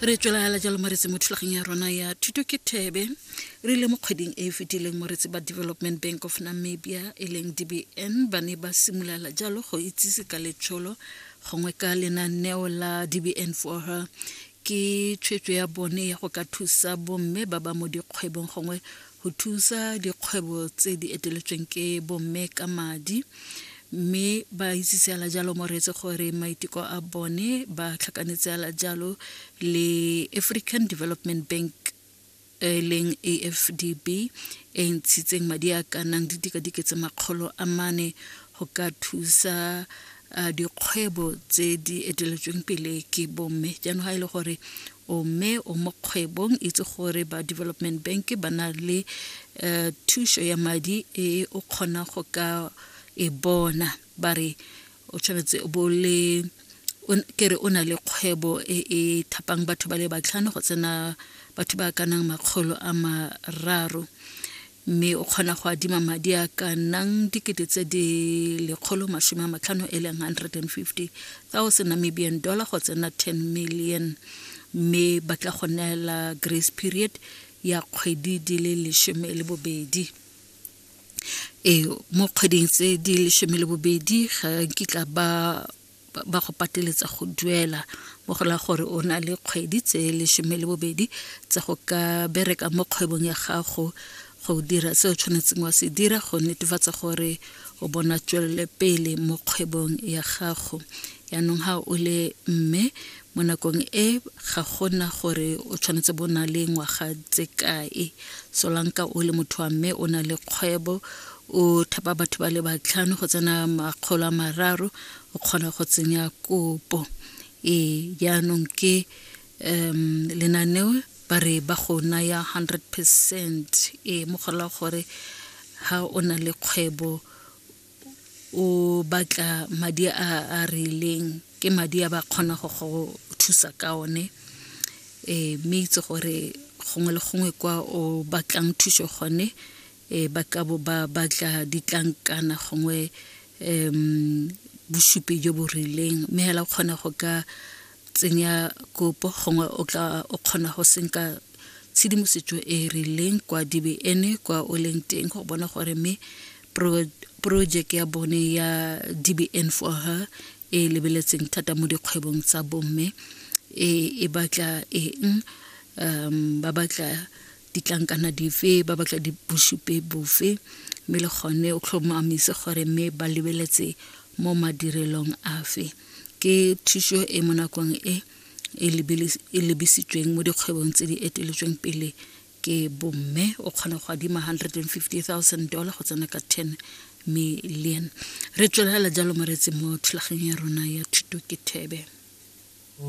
re tswelala jalo moretse mo thulageng ya rona ya thuto ke thebe re ile mo kgweding e e fetileng moretse ba development bank of namibia e leng dbn ba ne ba simolola jalo go itsise ka letsholo gongwe ka lenaneo la dbn for her ke tshwetso ya bone ya go ka thusa bomme ba ba mo dikgwebong gongwe go thusa dikgwebo tse di eteletsweng ke bomme ka madi mme ba itse seala jalo moreetse gore maiteko a bone ba tlhakanetse ala jalo le African Development Bank e leng AFDB e ntshitseng madi a ka nang didikadike tse makgolo a mane go ka thusa dikgwebo tse di eteletsweng pele ke bomme jaanong ga e le gore O mme o mo kgwebong itse gore ba development bank ba na le uh, thuso ya madi e o kgona go ka e bona ba re o tshwanetse bo le ke re o na le kgwebo e e thapang batho ba le batlhano go tsena batho ba ka nang makgolo a mararo mme o kgona go adima madi a ka nnang dikete tse di lekgolo masome a matlhano e leng 150000 namibian dollar go tsena 10 million mme ba tla go neela grace period ya kgwedi di le lesome le bobedi ee mo kgweding tse di lesome le bobedi ga nkitla ba ba go pateletsa go duela mo go la gore o na le kgwedi tse lesome le bobedi tsa go ka bereka mo kgwebong ya gago go dira se o tshwanetseng wa se dira go netefatsa gore o bona tswelele pele mo kgwebong ya gago yaanong ga o le mme mo nakong e ga gona gore o tshwanetse bo na le ngwaga tse kae solanka o le motho wa mme o na le kgwebo o thapa batho ba le batlhano go tsena makgolo a mararo o kgona go tsenya kopo ee jaanong ke um lenaneo ba re ba go naya 100 percent ee mo gola gore ha o na le kgwebo o batla madi a a rileng ke madi a ba kgona go go thusa ka one ee mme itse gore gongwe le gongwe kwa o batlang thuso gone e ba ka bo ba batla ditlankana gongwe um bosupi jo bo rileng mme hela o kgona go ka tsenya kopo gongwe o tla o kgona go senka tshedimosetso e e rileng kwa dbn kwa o leng teng go bona gore mme project ya bone ya dbn for her e lebeletseng thata mo dikgwebong tsa bomme e, e batla eng um ba batla ditlankana dife ba batla dibosupe bofe mme le gone o tlhomamise gore mme ba lebeletse mo madirelong afe ke thuso e mo nakong e e, e lebisitsweng mo dikgwebong tse di eteletsweng pele ke bomme o kgona go adima 150000 dollar go tsena ka 10 million re tswelela jalo moretsi mo thulaganyong ya rona ya thuto ke thebe